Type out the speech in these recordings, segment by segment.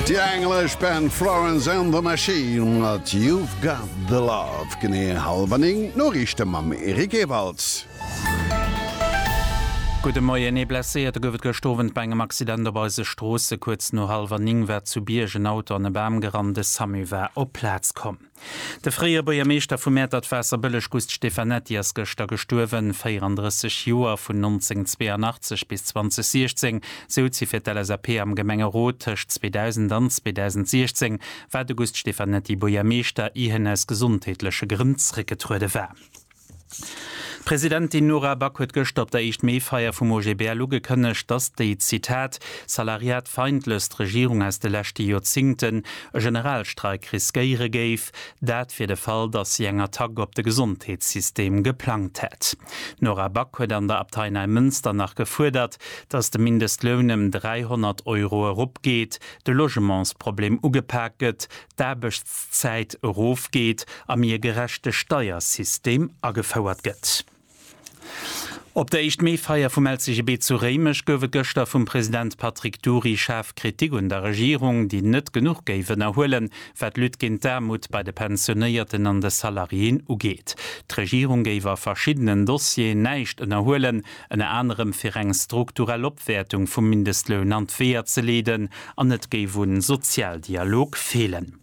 Déi englesch Band Florence and the Machine mat You've Got the Love. Genee hallef a néng d'Noriichte mam Eric Ewalds. Gudde Moien. Ee Blesséierte gouf et gëscht Owend bei engem Accident op eise Stroosse. Kuerz no hallef a néng war zu Bierg en Auto an e Bam gerannt. De Samu war op d'Plaz komm. De fréier Buergermeeschter vu Mäertert-Waasserbëlleg Gust Stefanetti ass gëschter gestuerwen, 34 Joer. Vun 1982 bis 2016 souz hie fir d'LSAP am Gemengerot. Tëscht 2000 an 2016 war de Gust Stefanetti Buergermeeschter, ier hien aus gesondheetleche Grënn zréckgetruede war. D'Presidentin Nora Back huet gëschter op der Eischt Mee-Feier vum OGBL ugekënnegt, dass déi, Zitat, salariatfeindlechst Regierung aus de leschte Joerzingten e Generalstreik riskéiere géif, dat fir de Fall, dass si eng Attack op de Gesondheetssystem geplangt hätt. D'Nora Back huet an der Abtei Neimënster nach gefuerdert, dass de Mindestloun ëm 300 Euro eropgeet, de Logementsproblem ugepak gëtt, d'Aarbechtszäit erofgeet a méi e gerechte Steiersystem agefouert gëtt. Op der Éischt-Mee-Feier vum LCGB zu Réimech gouf et gëschter vum President Patrick Dury schaarf Kritik un der Regierung, déi net genuch géif ënnerhuelen, wat d'Lutte géint d'Aarmut bei de Pensionéierten an de Salariéen ugeet. D'Regierung géif a verschiddenen Dossieren näischt ënnerhuelen, ënner anerem fir eng strukturell Opwäertung vum Mindestloun an d'Weeër ze leeden an et géif u Sozialdialog feelen.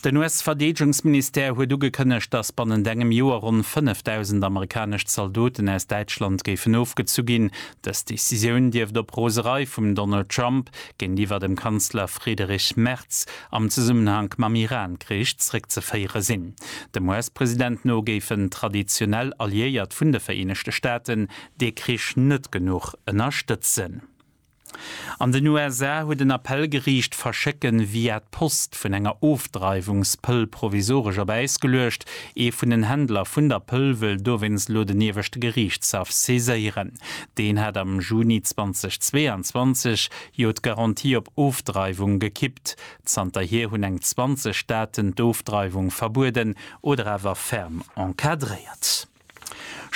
Den US-Verdeedegungsministère huet ugekënnegt, datt bannent engem Joer ronn 5.000 amerikanesch Zaldoten aus Däitschland géifen ofgezu ginn. Dës Decisioun dierft op Roserei vum Donald Trump géintiwwer dem Kanzler Friederich Merz am Zesummenhank mam Iran-Krich zréckzeféiere sinn. Dem US-President no géifen traditionell Alliéiert vun de Vereenegte Staaten dee Krich net genuch ënnerstëtzen. An den USA huet en Appell geriicht, d'Verschécke via d'Post vun enger Ofdreiwungspëll provisoresch op Äis geluecht. Ee vun den Händler vun der Pëll wëll dowéinst elo den ieweschte Geriichtshaff saiséieren. Deen hat am Juni 2022 jo d'Garantie op Ofdreiwung gekippt. Zanterhier hunn eng 20 Staaten d'Ofdreiwung verbueden oder awer ferm encadréiert.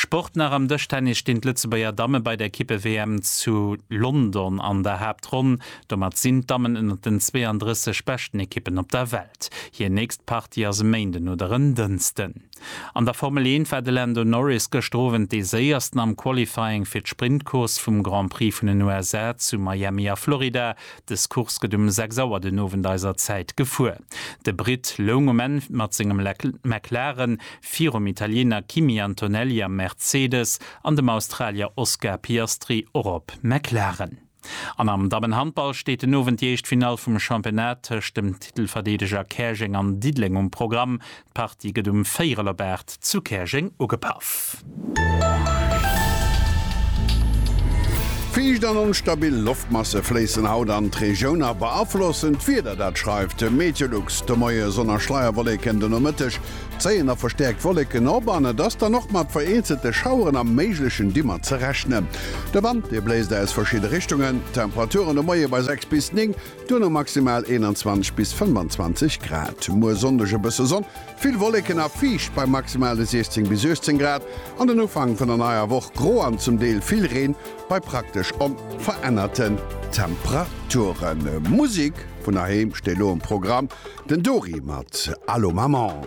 Sport nach, Am Dëschtennis stinn d'Lëtzebuerger Damme bei der Kippe-WM zu London an der Haaptronn. Domat sinn d'Dammen ënnert den 32 beschten Ekippen op der Welt. Hir nächst Partie ass e Méinden oder en Dënsten. An der Formel 1 war de Lando Norris gëschter Owend dee Séiersten am Qualifying fir d'Sprint-Course vum Grand Prix vun den USA zu Miami a Florida. Des Course gëtt um 6 Auer den Owend eiser Zäit gefuer. De Britt loung um Enn mat sengem McLaren virum Italiener Kimi Antonelli am Mercedes an dem Australier Oscar Piastri och op McLaren. An am Dammenhandball steet den Owend déi éischt Finall vum Championnat tëscht dem Titelverdeedeger Käerjeng an Diddeleng um Programm. D'Party gëtt um Véirelebaart zu Käerjeng ugepaff. Fiicht an onstabil Loftmasse fléissen haut an d'Regioun a beaflossen d'Wieder. Dat schreift de Meteolux de Moie. Sonn a Schleierwolleken den Nomëtteg zéien a verstäerkt Wolleken op an et ass dann och mat vereenzelte Schaueren a méiglechen Dimmer ze rechnen. De Wand dee bléist aus verschidde Richtungen. Temperaturen de Moie bei 6 bis 9, Duerno maximal 21 bis 25 Grad. Muer Sonndeg e bësse Sonn, vill Wolleken a fiicht bei maximale 16 bis 18 Grad. An den Ufank vun der neier Woch gro an zum Deel vill Reen bei praktesch onverännerten Temperaturen. Musek vun heiheem steet elo um Programm, den Dori mat Allo Maman.